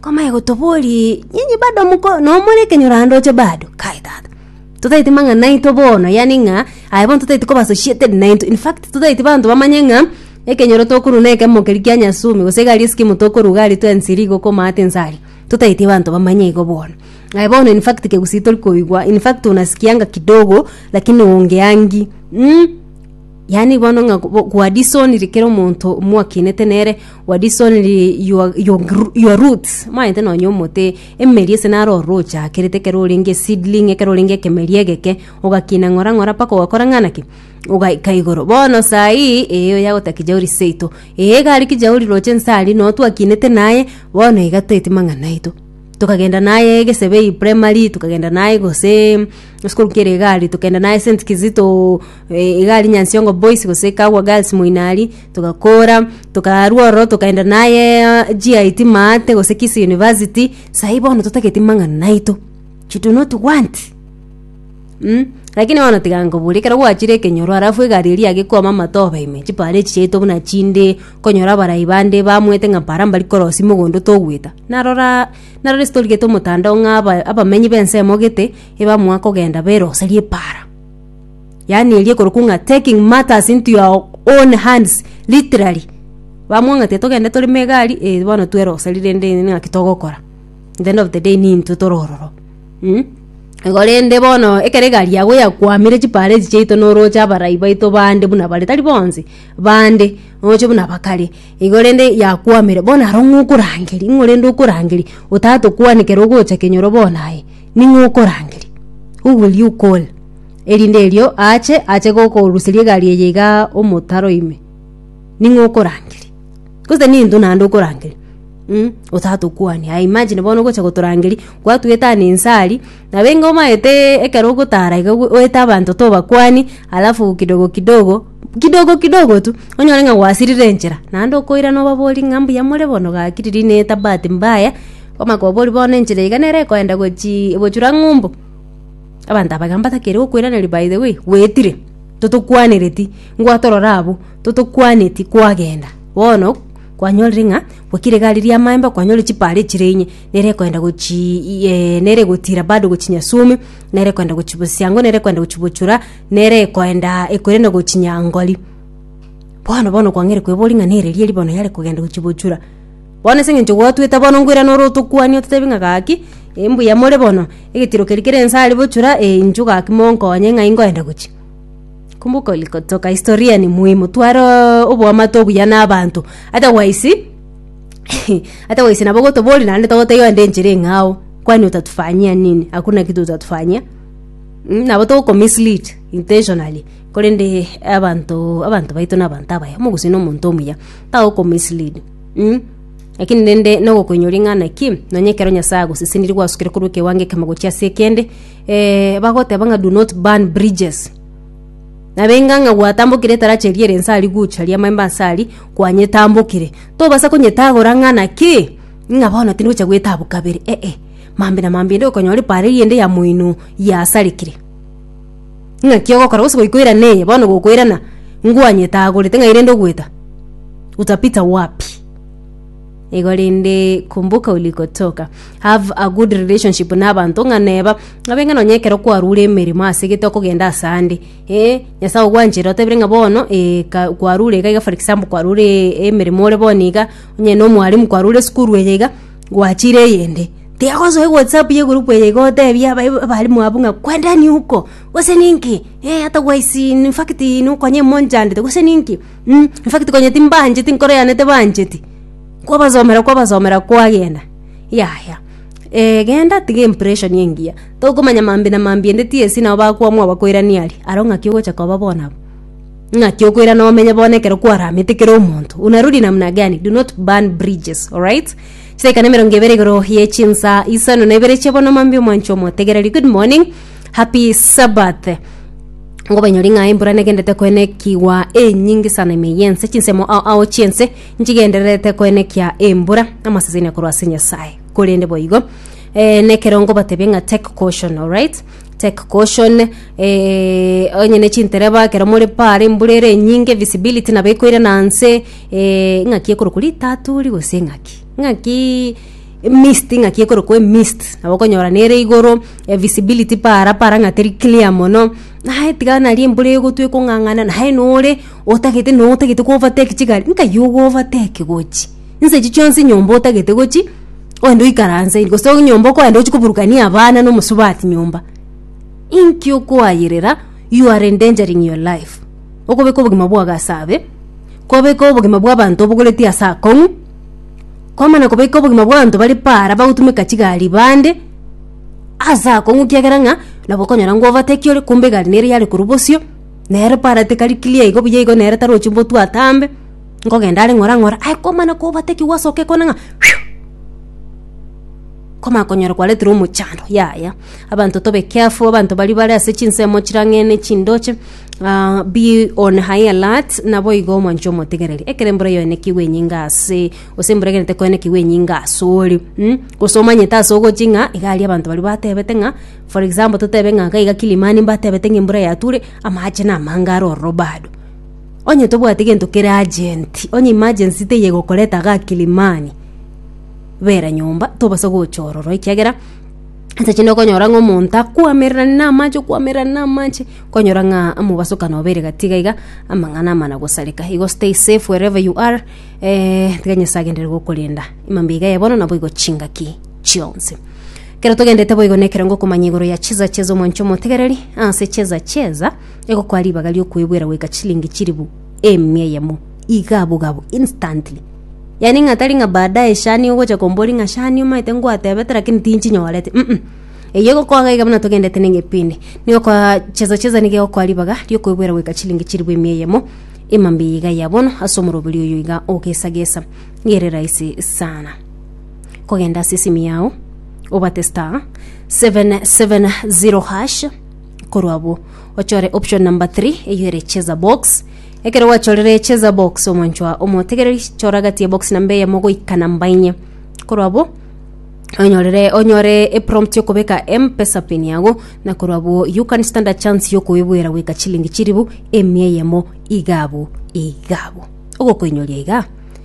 Komanye gotoborie nyinyi bado moko nomore ekenyorandoche bado kai tata totaeti mang'ana aito bono yani ng'a aye bono totaeti koba associated nainto in fact totaeti banto bamanye ng'a ekenyoro tokorwa na ekemo keria kia nyasumi gose iga aria eskimu tokorwa iga aria twensi iga rigo okomate inse aria totaeti abanto bamanye igo bono aye bono in fact kegusii tori koigwa in fact unasikianga kidogo lakini ongeangi mm. Yaani bono ng'a bo- gwa disoniri kera omonto mwakinete nere gwa disoniri your, your, gr- your roots maete nonye omote emeri ase naro ororo ochakerete ekero orenge seedling ekero orenge ekemeri egeke ogakina ng'ora ng'ora mpaka ogakora ng'ana ki ogaika igoro bono saii eyo yagoteba kijauri seito ee iga aria kijauri roche nse aria no twakinete naye bono iga toeti mang'ana aito tokagenda naye gesebei primary tokagenda naye gose esukuru kere iga aria tokagenda naye st kizito Eh, iga ari nyansiongo boys gose kagwa girls moino aria togakora tokarwa ororo tokaenda naye ah, git maate gose kisi university sahi bono totageti mang'ana naito you do not want Mm. lakini bono tiga nkobori ekero gwachire ekenyoro alafu egari eria yagekwama amatoba ime chipara echi chiaito buna chinde konyora abarai bande bamwete ng'a para mbari korosi mogondo togweta narora narora estori gete omotandao ng'a aba- abamenyi b'ense emogete ebamoa kogenda beroseria epara yaani eria ekorokwa ng'a taking matters into your own hands literally bamwang'atia togende tore me egari eh bono tweroseri rende naki togokora at the end of the day nintwe tore ororo mm? Igo rende bono ekero egari yago yakwamire chipara echi chiaito noroche abarai baito bande buna bare tari bonsi bande oroche buna bakare igo rende yakwamire bono aro ng'okorangeria ng'o rende okorangeria otatokwane ekero ogocha kenyoro bono aye. Ning'o okorangeria? Who will you call? Erinde erio aache, ache gokoruseria egari eye iga omotaro ime. Ning'o okorangeria? Gose nintwe naende okorangeria? Mm, otatokwania. I imagine bono ogocha gotorangeria, gwatuetania inse aria, nabo enga omaete ekero ogotara iga gwe oete abanto tobakwani, alafu kidogo kidogo, kidogo kidogo tu, onyore ng'a gwasirire enchera, naende okoirana obaborie ng'a mbuya more bono gaki riria neta bahati mbaya. Omakobori bono enchera iga nere ekoenda gochi- gochura ng'umbu. Abanto aba iga batakeire gokoiraneria by the way, goetire, totokwanereti, ngwatorora abwo, totokwaneti kwagenda. Bono, kwanyorire ng'a kwakire egari ri'amaemba kwanyorire chipare chire inye, nere ekoenda gochii iyeeeh nere egotira bado gochia Nyasume, nere ekoenda gochia Bosiango, nere ekoenda gochia Bochura, nere ekoendaa ekoirana gochia Nyangori. Bono bono kwang'eire koeboria ng'a nere riari bono yare kogenda gochia Bochura. Bono ase eng'encho gwatuete bono nkoirana ore otokwanie ototebi ng'a gaki, eh mbuya more bono, egetiro keria kere inse aria bochura, eh inchuo gaki monkonye ng'ai nkoenda gochia. Kumbuka ulikotoka, historia ni muhimu, twareee oboamate obuya na abanto, otherwise otherwise nabo gotoboria naende togotebia ande enchera eng'ao, kwani utatufanyia nini, hakuna kitu utatufanyia, mh nabo togoko mislead intentionally, korende abanto abanto baito na abanto abaya, omogusii na omonto omuya, tagoko mislead. Umm Lakini rende nogokoinywa ring'ana ki? Nonya ekero Nyasae agosesenirie gwasukire korwa ekewango ekemo gochia ase ekende, eh, bagoteba ng'a do not burn bridges. Nabenga ng'a gwatambokire etarachi eria ere inse aria gocha ria maemba inse aria, kwanyetambokire. Tobasa konyetagora ng'a naki? Ng'a bono tindi gocha goetabu kabere, eh-eh. Mambia na mambia ende okonyora epaara eyende ya moino yasarekire. Ng'aki ogokora gose goikoirana eye bono gokoirana ngwanyete agorete ng'ai rende ogoeta? Utapita wapi? Igo rende kumbuka ulikotoka. Have a good relationship na abanto ng'a neba abe ng'a nonye ekero kwarure emeremo ase gete okogenda ase ande eh Nyasae ogwanchire otebire ng'a bono eh ka kwarure iga iga for example kwarure emeremo ore bono iga onye na omwalimu kwarure esukuru eye iga Gwachire eyende, tiagosoa ewhatsapp y'egurupu eye gotebia aba- abarimu abwo ng'a kwendeni huko, gose ninki, eh, hata gwaisi in- infact nokonya emochandete gose ninki, mm, infact konya timbancheti nkoro yane tebancheti, kwabasomera kwabasomera kwagenda, yaya genda tiga empression engiya, tokomanya mambia na mambia ende TSC nabo bakwamua bakoirania aria, aro ng'aki ogocha koba bono aba. Ng'aki okoirana omenye bono ekero kwaramete kera omonto unarudi namna gani do not burn bridges alright chidaika na emerongo ebere igoro ye chinsa isano na ibere chia bono mambia omwancho omotegereri good morning happy sabbath ngobanyori ng'a embura negendete koenekigwa enyinge sana ime yense chinsemo ao ao chiense nchigendererete koenekia embura amasesenia korwa ase nyasaye korende boigo eh, nekero ngobatebie ng'a take caution alright Take caution eh, onye ne chintereba ekero more paare embura ere enyinge visibility nabo ekoirana anse eh, ng'aki ekorokwa ritaturi gose ng'aki ng'aki mist ng'aki ekorokwa emist nabo okonyora nere igoro eh, visibility paara paara ng'a teri clear mono naye tiga nari embura egotwa ekong'ang'ana naye nore otagete notagete ko overtake chigari nkai ogo overtake gochi Inse echi chionsi nyomba otagete gochi ogende oikaranse gose nyomba okoenda gochi koburukania abana na omosubati nyomba inki okoayerera you are endangering your life okobeka obogima bwago ase abe kobeka obogima bwa abanto obogoretie ase akong'u kwamana kobeka obogima bwa abanto bare para bagotumeka chigari bande ase akong'u kiagera ng'a nabo okonyora ngo overtake ore kumbe egari nere yare korwa bosio nere para tekari clear igo buya igo nere tarochi mbotwe atambe. Nkogenda are ng'ora ng'ora, aye komana kobatekigwa ase oke kona ng'a phew! Komana konyora kwareterwa omochando, yaya. Abanto tobe careful, abanto baria bare ase chinsemo chirang'ene chindoche, ah be on high alert, naboigo mwanche omotigereri. Ekero embura yaenekigwe enyinge ase, gose embura egenete koenekigwa enyinge asore, mm, gose omanyete ase ogochi ng'a iga aria abanto baria batebete ng'a, for example totebe ng'a iga iga Kilimani mbatebete ng'a embura yature, amache namange are ororo bado. Onye tobwate gento kere agent, onye emergency teye gokoreta ga Kilimani, bera nyomba tobasa gocha ororo ekiagera ase chinde okonyora ng'a omonto akwamererani na amache okwamererani na amache okonyora ng'a mobasokano obeire gati iga iga amang'ana amana gosareka. Igo stay safe wherever you are eh, tiga Nyasaye agenderere gokorenda ime mbiga eye bono naboigo chingaki chionsi. Ekero togendete boigo nekero ngokomanya igoro ya cheza cheza omwancha omotegereri ase cheza cheza Egokwa ribaga ri'okwebwera goika chilingi chilifu eemia eyemo, iga abogabo, instantly. Yani ng'a tari ng'a baadaye shani ogocha kombori ng'a shani omaete ngwatebete lakini tinchinyorete. Mm-mm. Eyio egokwa iga buna togendete nengepindi. Negokwa chezo cheza niga egokwa ribaga ri'okwebwera goika chilingi chilifu eemia eyemo, emambe iga ya bono ase omoroberi oyo iga ogesagesa. Niga ere rahisi sana. Kogenda ase esimi yao, obate star 770 hash, korwa abwo ochore option number 3 eyere cheza box ekero gwachorire cheza box omonchwa omotegereri chora gati ya box namba eyemo goika namba inye korwa abwo onyorere onyore eprompt yokobeka mpesa pin yago na korwa abwo you can stand a chance yokoebwera goika chilingi chiribu emia eyemo iga abwo iga abwo ogokoinyoria iga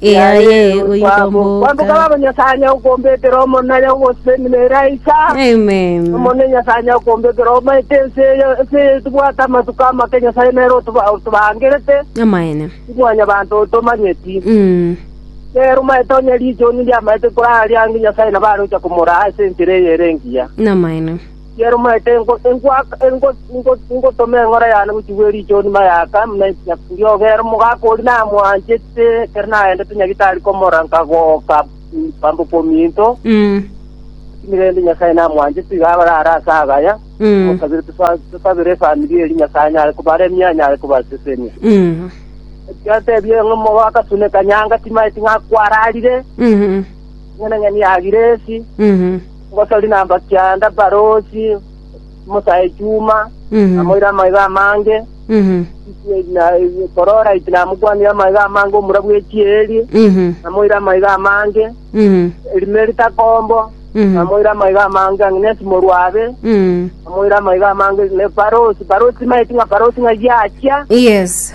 Yaye oikomboka. Baba Nyasae nya okombekera omonare ogosemi nere aicha. Amen. Omone Nyasae nya okombekera omaete ense eye ense eye tibwate amatuko amake Nyasae nere otoba- otobangerete Amaene. timwanyabanto otomanyeti. Mm. Nere omaete onye riichuni riamaete korara riange Nyasae nabo arocha komoraa ase enchera eye ere engiya. Namaene. Yaromete ingotoma eng'ora yane gochia gwe riicho onima y'aka, buna ekinyakuri ogere omogaka oria namwanchete ekero naendete Nyagitari komorora nkagoka bambe okominto. Lakini rende Nyasae namwanchete, iga abare are ase agaya, omosabere tosabere efamiri eria Nyasae anyare kobaremia, anyare kobasesenia. Erio atebia ng'a omogaka sune kanyanga chimaeti ng'a kwararire, eng'enang'eni ya Giresi. ngotori nambakianda Barosi, omosae Juma, namoira amaiga amange, na korora iti namokwanire amaiga amange omura bwe chieri, namoira amaiga amange, Elimeri takombo, namoira amaiga amange ang'e nesimorwa abe, namoira amaiga amange ne Barosi, Barosi maeti ng'a Barosi ng'a giachia, Yes.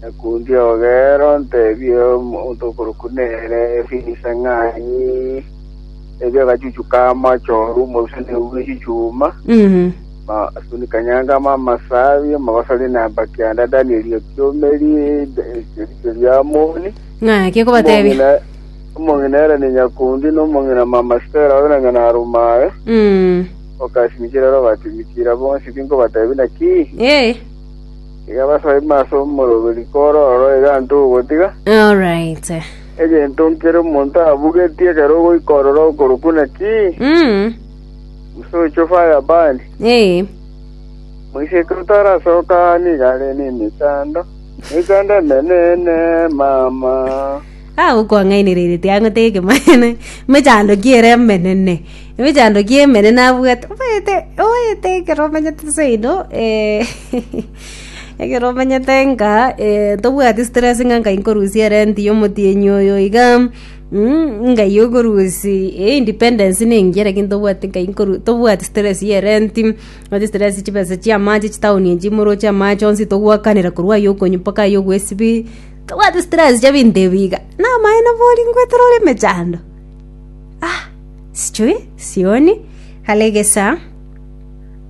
Nakundi ogere ontebie omonto okorokwa nere Efinise ng'a ni erio agachuchu k'amache oru omoruseni ogwe chichuma, Mhm. ma asuni kanyanga ama amasabi, omogosori na mbakianda dani erio kiomeri erio riamoni. Ng'aki okobatebia. Omong'ina- Omong'ina ere ni nyakundi, na omong'ina mama Stella obe na nyana arumaye, Mm. okasimikire ere obatimikire, bonsi tinkobatebia naki. Eh. Iga basoe ime ase omoroberi kororo egento ogotiga. Alright. Egento nkere omonto abugetie ekero ogoika ororo okorokwa naki? Mm. Musocho fire burn. Ee. Moise ekero otarasoka aa niga are nemechando. Emechando emenene mama. Ah, okwang'ainereretie ang'o teke mwana. Mechando kiere emenene. Mechando kie emenene abwate. Oete, oete ekero omenyete seino eh Ekero omenyete ng'a tobwati stress ng'a nkai nkorusia erenti ya omotienyi oyo iga nkai okorusi independence ne engiya naki tobwati nkai tobwati stress ya erenti tobwati stress chibesa chia amache chitown echi moroche amache onsi togwakanera korwa aye okonyu mpaka aye okwo esbi tobwati stress chia ebinto ebi iga na amaene bori ngwetera ore emechando ah sichuri sioni kare egesaa.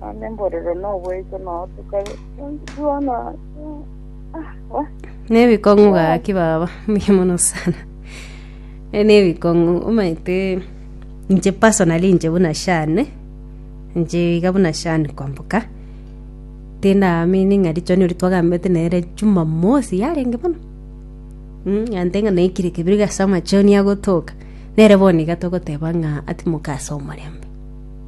Nonya emborero noboiso notuka bono ah, wa nebikong'u gaki baba muya mono sana Eh, nebikong'u omaete inche personally inche buna shane inche iga buna shane kwamboka tindamini ng'a richoni ori twagambete nere jumamosi yarenge bono Mm, ante ng'a naikire kebiri gase amachoni agotoka nere bono iga togoteba ng'a atimoka ase omorembe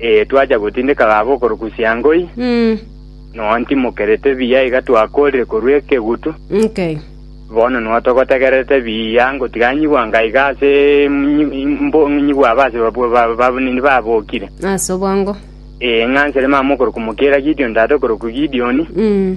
Ee, twacha gotindeka gabo okorukusia ngoi, Mm, nonya timokerete buya iga twakoorire korwa ekegutu. okay. Bono nonya togotegererete buya ngotiga nyigwa nka iga ase nyi- mbo- nyigwa aba ase babu- ba- babu- nini babokire. Ase obongo. Ee, ng'a nsere mama okoruku mokiera Gideoni tata okoruku Gideoni, Mm,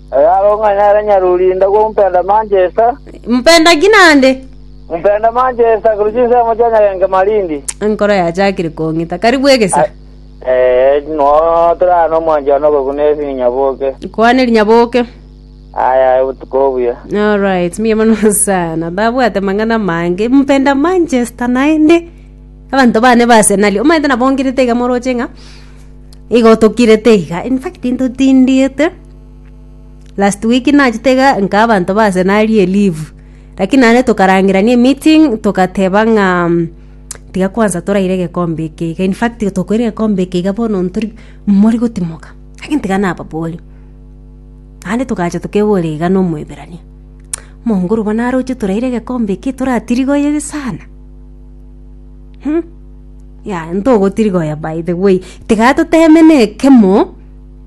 Eyaro ng'a nere nyarurinda gw'omompenda Manchester. Mpenda ki naende? Ompenda Manchester korwa chinsemo chia nyagenke Malindi. Enkoro yachakire kong'ita. Karibu egesa. Eh, no torara nomwanchani okoguna esini nyaboke. Kwane rinyaboke. Aya aye botuko obuya. Alright, mbuya mono sana. Ndabwate mang'ana mange. Mpenda Manchester naende. Abanto bane ba Arsenal. Omaete nabongirete iga moroche ng'a igo tokirete iga. In fact, ntotindiete. Last week nachete iga nka abanto ba Arsenal ari e leave, lakini naende tokarangerania emeeting togateba ng'a tiga kwansa toraire egekombe eke iga, in fact tokoira egekombe eke iga bono ntori mori gotimoka, lakini tiga nababore. Naende togacha tokebora iga na Omoiberania, Mongoru bono aroche toraire egekombe eke toratirigoyere sana? Yaya ntogotirigoya by the way, tiga totemene ekemo.